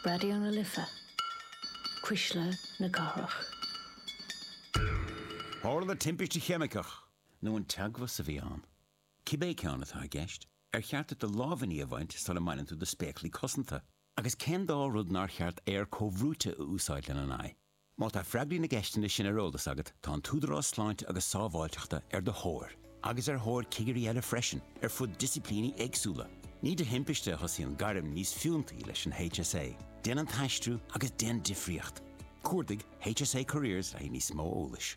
Raidió na Life, Cuisle na Cathrach. Tharla timpiste cheimiceach. Nó an teagmhas a bhí ann. Cibé ceann atá i gceist, ar cheart duit do lámhainní a bhaint sula mbaineann tú do spéaclaí cosanta? Agus cén dá rud nár cheart aer comhbhrúite a úsáid lena n-aghaidh? Má tá freagraí na gceisteanna sin ar eolas agat, tá an tÚdarás Sláinte agus Sábháilteachta ar do thóir, agus ar thóir cigirí eile freisin, ar fud disciplíní éagsúla. Ní de thimpiste a thosaíonn gairm níos fiúntaí leis an HSA, déan an t-aistriú agus déan difríocht! Cuardaigh HSA Careers le haghaidh níos mó eolais.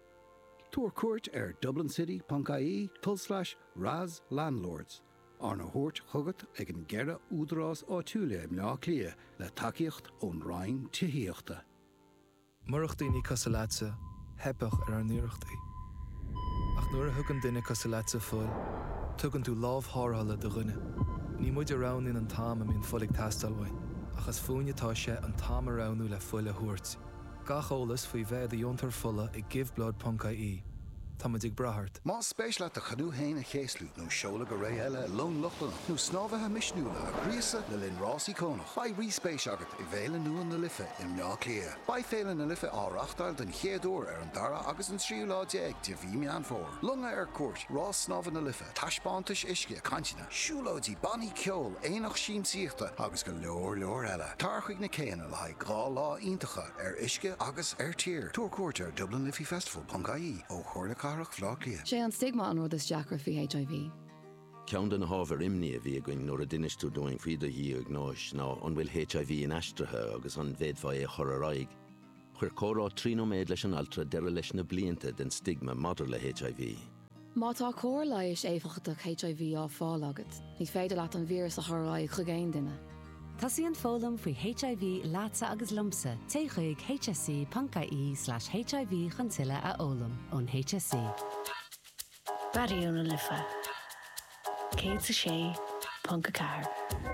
Tabhair cuairt ar dublincity.ie tulslais RAS Landlords, arna thabhairt chugat ag an gceithre údarás áitiúla i mBleá Cliath le tacaíocht ón Roinn Tithíochta. Murach daoine cosúil leatsa, theipfeadh ar ár n-iarrachtaí. Ach nuair a thugann duine cosúil leatsa fuil, tugann tú lámh tharrthála do dhuine. Ní muid a roghnaíonn an t-am a mbíonn fuil ag teastáil uainn, ach is fúinne atá sé an t-am a roghnú le fuil a thabhairt. Gach eolas faoi bheith i do dheontóir fola ag giveblood.ie. Táimid ag brath ort. Más spéis leat do chanú féin a chéaslú, nó seoladh go réidh i long Lochlannach, nó snámhaithe misniúla a ghríosadh le linn rás íocónach, beidh ríspéis agat i bhFéile nua na Life i mBleá Cliath. Beidh Féile na Life á reáchtáil den chéad uair ar an dara agus an tríú lá déag de mhí Meán Fómhair. Longa ar cuairt, rás snámha na Life, taispeántais uisce, cainteanna. Siúlóidí, bannaí ceoil, aonach siamsaíochta agus go leor leor eile. Tar chuig na céanna le haghaidh dhá lá iontacha ar uisce agus ar tír. Tabhair cuairt ar dublinliffeyfestival.ie ó Chomhairle Cathrach Bhleá Cliath. Sé an stigma an rud is deacra faoi HIV. Ceann de na hábhair imní a bhí againn nuair a d'inis tú dúinn faoi do dhiagnóis ná an bhfuil HIV inaistrithe agus an bhféadfá é a chur ar aghaidh. Chuir comhrá trí nóiméad leis an altra deireadh leis na blianta den stigma maidir le HIV. Má tá cóir leighis éifeachtach HIV á fáil agat, ní féidir leat an víreas a chur ar aghaidh chuig aon duine. Tosaíonn foghlaim faoi HIV leatsa agus liomsa, téigh chuig hse.ie/hiv chun tuilleadh a fhoghlaim ón HSE. Raidió na Life 106.4.